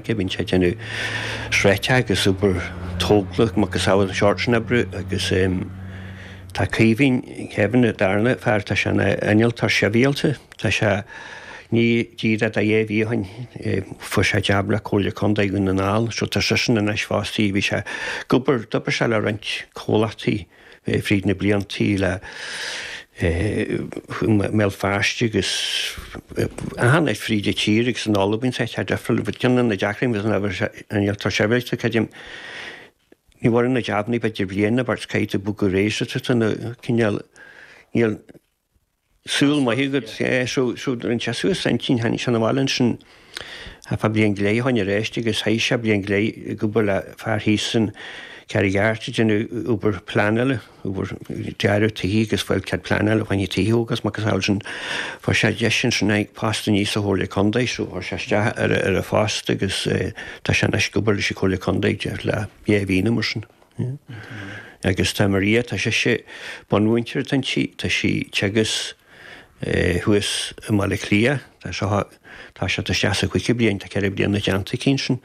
Cé bhíonn sé ag déanamh sraithe agus obair tógála agus a macasamhail, an seort sin oibre agus tá Caoimhín, Kevin, an darna fear, tá sé ina innealtóir sibhialta, tá sé ní díreach dhá mhí ó shin, fuair sé jab le Comhairle Contae Dhún na nGall, so tá seisean anois fostaí, bhí sé ag obair, d'obair sé le roinnt comhlachtaí, fríd na bliantaí le mBéal Feirste agus athshonraigh fríd an tír agus an Albain sa chead Aifrinn. Bhfuil ceann de na deacraí mé san ábhar seo an iarrtar seirbhís do Chaidéim. Ní mhór an a deimhníodh idir bhliain na bpáirtithe caidé bog go réir sa tríocha na cineál. Níl saol maith agat. So rinne sé suas a intinn, tháinig sé na bhaile ansin ar feadh bliain go leith, tháinig aríst agus chaith sé bliain go leith ag obair le fear thíos sa Charraig Airt ag déanamh obair pleanála, obair dearadh tithí agus ag fáil cead pleanála fá choinne tithí a thógáil is a macasamhail sin. Fuair sé deis ansin tháinig post aníos sa Chomhairle Contae, so chuir sé isteach ar an phost agus tá sé anois ag obair leis an Chomhairle Contae go díreach le dhá mhí nó mar sin. Agus tá Maria, tá sise bunmhúinteoir atá inti, tá sí ag teagasc thuas i mBaile Átha Cliath, tá seo, tá sé, tá sí sa chúigiú bliain, tá ceithre bliana déanta aici ansin,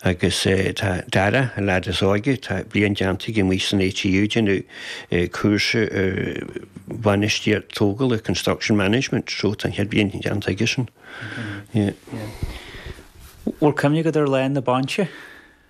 agus tá Dara, an leaid is óige, tá bliain déanta aige amuigh san ATU, ag déanamh cúrsa ar bhainistíocht tógála, construction management, so tá an chéad bliain déanta aigesan. Bhfuil cuimhne agat ar lá na bainise?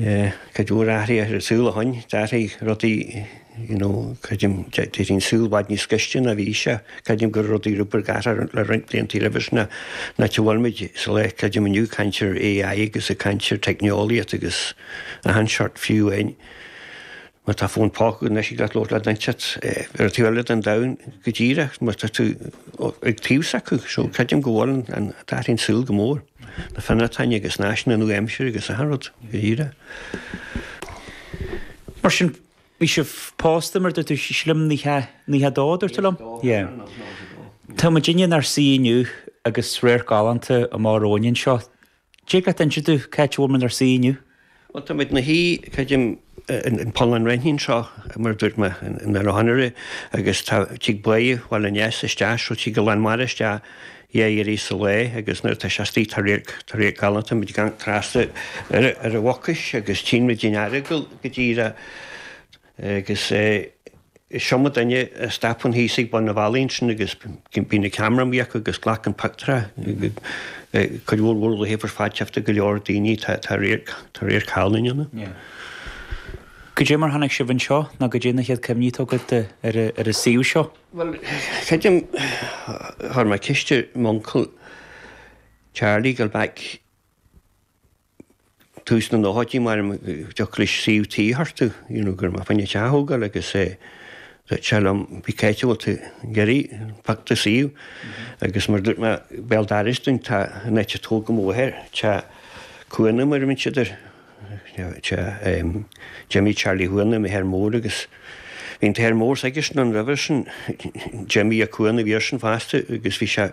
Cuid mhór athruithe ar an saol ó shin, d'athraigh rudaí you know creidim d'éirigh an saol i bhfad níos gaiste ná a bhí sé. Creidim go raibh rudaí rud beag ag athrú le roinnt blianta roimhe sin ná an áit a bhfuil muid sa lá creidim inniu ag caint ar AI agus ag caint ar teicneolaíocht agus achan seort fiú an Má tá fón póca anois thig leat labhairt le duine inteacht ar an taobh eile den domhan go díreach mar atá tú ag taobh s'acu, so creidim go bhfuil, d'athraigh an saol go mór, na finrátaíní agus na áiseanna nua aimsire agus achan rud go díreach. Mar sin bhí sibh pósta mar a dúirt tú sílim nócha, nócha dó a dúirt tú liom? Yeah. Tá muid inniu inár suí inniu agus radharc galánta amach romhainn anseo. Cé cá háit, an inseoidh tú cá háit a bhfuil muid inár suí inniu? Bhuel, táimid inár suí, creidim, in Poll an Raithnín seo, mar a dúirt mé in ar aghaidh anuraidh, agus tá, tig Bá Bhaile an Easa, isteach, so tig an lán mara isteach, dhá iarraidh sa lae, agus nuair atá sé astoigh, tá radharc, tá radharc galánta, táimid ag amharc trasna ar an Mhucais, agus tchíonn muid an Earagail go díreach. Agus is iomaí duine a stopann thíos ag bun an bhealaigh ansin agus bíonn an ceamara amuigh acu agus glacann pictiúrtha. Cuid mhór mhór le híobairt fadtéachta go leor daoine tá radharc, tá radharc galánta ann. Goidé mar tháinig sibh anseo nó goidé na chéad cuimhní atá agat de ar ar an suíomh seo? Bhuel creidim chuir mé ceist ar m'uncail Charlie go mbeadh, tús na nóchaidí, mairim go dtiocfadh leis suíomh tí a thabhairt, you know, go raibh mé fá choinne teach a thógáil agus eh duirt sé liom cibé áit a bhfuil tú ag iarraidh, pioc an suíomh agus mar dúirt mé béal dorais duinn tá an áit a tógadh mo mháthair, teach Chuanna mar a bheir siad air, teach em Jimmy Charlie Chuanna m'athair mór agus bhí an t-athair mór s'aigesean roimhe sin Jimmy a' Cuanna a bhí airsean fosta agus bhí sé,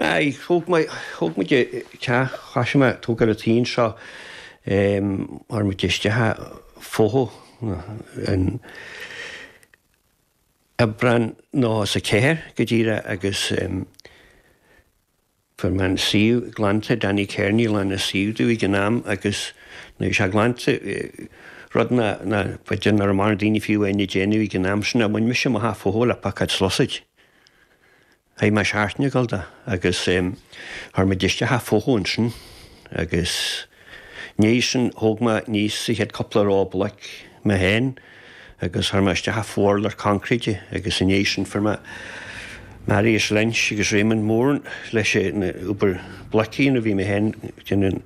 Aye, thóg mé, thóg muid an teach, thoisigh mé ag tógáil an tí seo, em, chuir muid isteach an fothú in, in Aibreán nócha ceathair go díreach agus, em, fuair mé an suíomh glanta, Danny Kearney a ghlan an suíomh domh ag an am agus nuair a bhí sé glanta, rud ná, ná, b'fhéidir nach raibh mórán daoine fiú áin ag déanamh ag an am sin ná bhain mise amach an fothú le piocóid is sluasaid. Chaith mé seachtain ag gabháil dó agus chuir muid isteach a' fothú ansin agus ina dhiaidh sin, thóg mé, aníos an chéad cúpla ró bloc mé féin agus chuir mé isteach a' fo-urlár coincréite agus ina dhiaidh sin fuair mé Maurice Lynch agus Raymond Moran leis an obair bloc a dhéanamh, bhí mé féin ag déanamh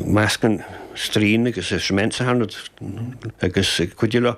meascán stroighin agus cement sa hard agus ag cuidiú leofa